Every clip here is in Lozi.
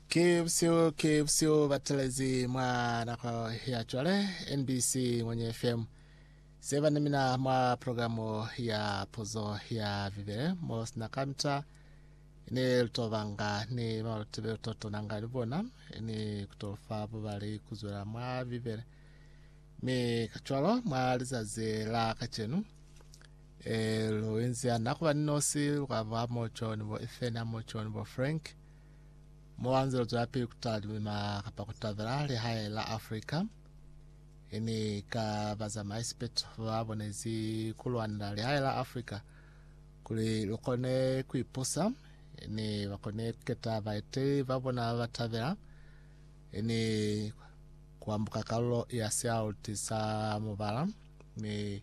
Ki busihu, ki busihu batelezi mwa nako ya cwale NBC Ngwenye FM. Seba ni mina mwa programu ya puzo ya Bibele mo sina kamita ni lutobanga ni malutebe lutotonanga ni bona ni kutofa bubali kuzwela mwa Bibele. Mi kacwalo mwa lizazi la kacenu Ee, lu inzi ana ku ba ni nosi, lwa ba mo John, bo Ethan, mo John, bo Frank, mo wa nze lu zwelapili ku tala limima kapa ku tabela lihae la Africa. Ini ka bazamaisi peto ba bonezi ku lwanela lihae la Africa kuli lu kone ku ipusa, ini ba kone ku keta baeteli ba bona ba ba tabela, ini ku ambuka kalulo ya sialuti sa mubala, ni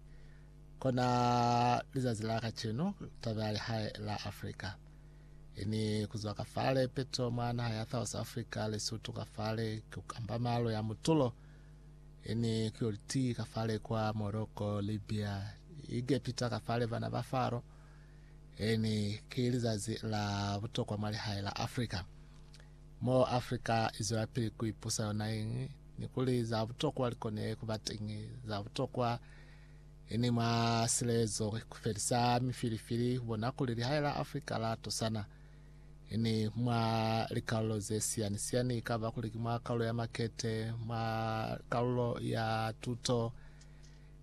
Kona lizazi la kacenu, taba ya lihae la Afrika ini kuzwa ka fale peto mwa naha ya South Africa, Lesotho ka fale ku kamba malo ya mutulo ini kuyo liti ka fale kwa Morocco, Libya, Egepita ka fale bana ba Faro ini ki lizazi la butokwa mwa lihae la Afrika. Mo Afrika izwela pili ku ipusa yona ini ni kuli za butokwa likone kuba teñi za butokwa Ini mwa silezo ku felisa mifilifili ku bona kuli lihae la Afrika la tosana. Ini mwa likalulo ze siyani-siyani, ikaba kuli ki mwa kalulo ya makete, mwa kalulo ya tuto,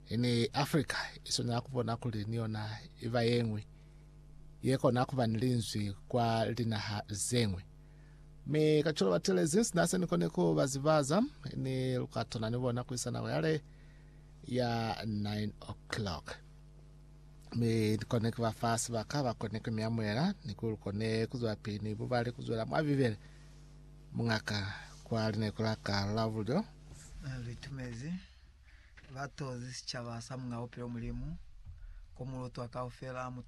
ini Afrika i swanela ku bona kuli ni yona i ba ye ñwi ye kona ku ba ni linzwi kwa linaha ze ñwi. Mi kacwalo batelezi sina se ni koni ku ba zibaza, ini lu ka tona ni bona kuisanako yale. ya 9 o'clock mi kone kuba fa sibaka ba kone ku miamuela ni ku kone kuzwa pili ni bubale kuzwela mwa bibele mungaka kwa line kula ka la bulyo litumezi batozi sicaba sa munga bupilo mulimu ko mulutwa kaufela muto